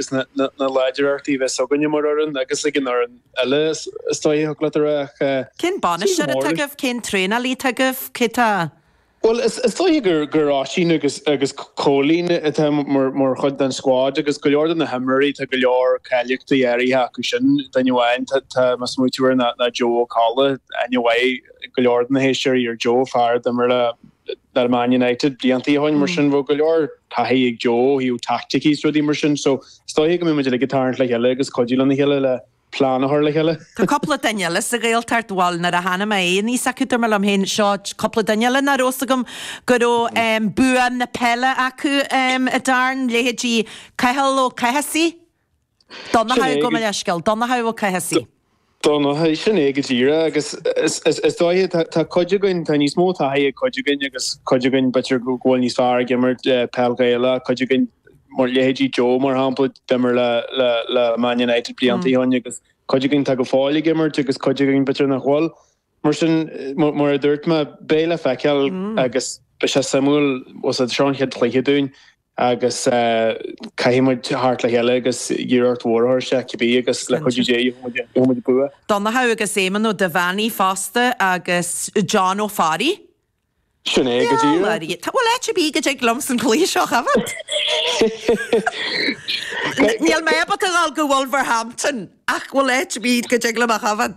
agus na láidreachtaí a bheas againn mar fhoireann agus ag an fhoireann eile is dóigh go dtiocfadh leat a rá ach. Cén bainisteoir atá agaibh? Cén traenálaí atá agaibh? Cé tá. Bhuel is dóigh gur Oisín agus Cóilín atá mar chuid den scuad agus go leor de na himreoirí tá go leor cáilíochtaí áirithe acu sin. Duine amháin atá mé ag smaoitiú air ná Joe Ó Colla. Aithne mhaith ag go leor de na héisteoirí ar Joe, fear a d'imir le. le Man United blianta ó shin mar sin tá go leor taithí ag Joe ó thaobh teaicticí is rudaí mar sin so is dóiche go mbeidh muid uilig ag tarraingt le chéile agus cuidiú lena chéile le plean a chur le chéile. Tá cúpla duine eile sa Ghaeltacht, bhuel nuair a thána mé aníos inniu dúirt mé liom féin seo cúpla duine eile nach raibh a fhios agam go raibh bua na peile acu a Darren, leithéidí Cathal Ó Cathasaigh, Donnacha gabh mo leithscéal. Donnacha Ó Cathasaigh. Donnacha, Sin é go díreach. Agus is dóiche tá cuid againn, tá níos mó taithí ag cuid againn agus cuid againn b'fhéidir go bhfuil níos fearr ag imirt peil Ghaelach, cuid againn, mar leithéidí Joe mar shampla, d'imir le le Man United blianta ó shin agus cuid againn tá go fóill ag imirt agus cuid againn b'fhéidir nach bhfuil. Mar sin, mar a dúirt mé, beidh le feiceáil agus beidh sé suimiúil, ós é seo an chéad chluiche dúinn. agus caithfidh muid theacht le chéile agus iarracht mhór a thabhairt dó, cibé, agus le cuidiú Dé gheobhaidh muid bua. Donncha agus Éamon Ó Duibheannaigh fosta agus John Ó Fearraigh. Sin é go díreach. Bhuel, áit ar bith go dtig liom sa chluiche seo, a bhí. Níl mé ábalta a ghabháil go Wolverhampton ach, bhuel, áit ar bith go dtig liom ach, Evan.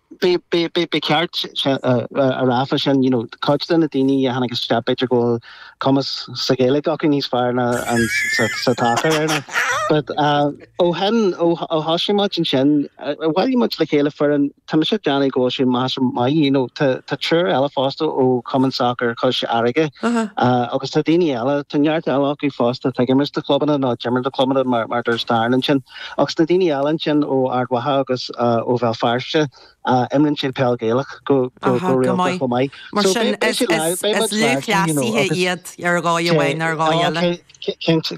Ba cheart a rá fosta ansin, you know, cuid de na daoine a tháinig isteach, b'fhéidir go bhfuil cumas sa Ghaeilge acu níos fearr ná ann sa tsacar. But ó shin, ó thosaigh muid ansin, bhailigh muid le chéile foireann, tá mise ag déanamh go bhfuil sé measartha maith, you know, tá tá triúr eile fosta ó Chumann Sacar Chois Fharraige agus tá daoine eile, tá neart eile acu fosta, tuigim a imríos do chlubanna nó d'imir do chlubanna mar mar dúirt Darren ansin. Agus na daoine eile ansin ó Ard Mhacha agus ó Bhéal Feirste, imríonn siad peil Gaelach go rialta chomh maith. Mar sin, is lúthchleasaithe iad ar dhóigh amháin nó ar dhóigh eile. Cinnte.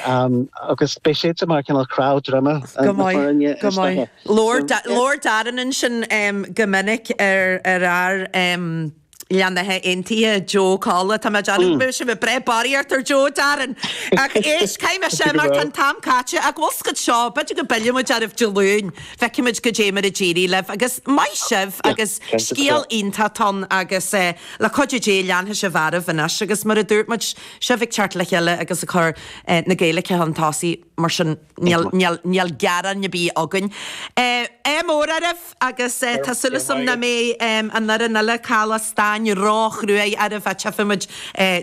Agus beidh siadsan mar cineál cnámh droma na foirne is dóiche. Labhair Darren ansin go minic ar fhear. darb ainm Joe Ó Colla tá mé ag déanamh, bhfuil sé ag breith bairr ort ar Joe Darren ach éist caithfidh mé sin mar tá an t-am caite ach bhfuil a fhios agat seo b'fhéidir go bpillfidh muid oraibh Dé Luain go bhfeicfidh muid goidé mar a d'éirigh libh agus maith sibh agus scéal iontach ann agus le cuidiú Dé leanfaidh sibh oraibh anois agus mar a dúirt muid sibh ag teacht le chéile agus ag cur na Gaeilge chun tosaigh. Mar sin, níl gearán ar bith againn. Ádh mór oraibh agus tá súil agam nach mbeidh an fhoireann eile, Caladh Stáin, ró-chruaidh oraibh, á tiocfaimid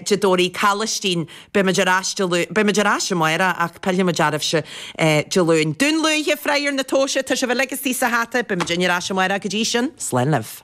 de Doirí Calaistín, beimid ar ais Dé Luain, beimid ar ais amáireach ach pillfimid oraibhse Dé Luain. Dún Lúiche, freagar na tomhaise, tá sibh uilig istigh sa hata, beidh muidne ar ais amáireach, go dtí sin, slán libh.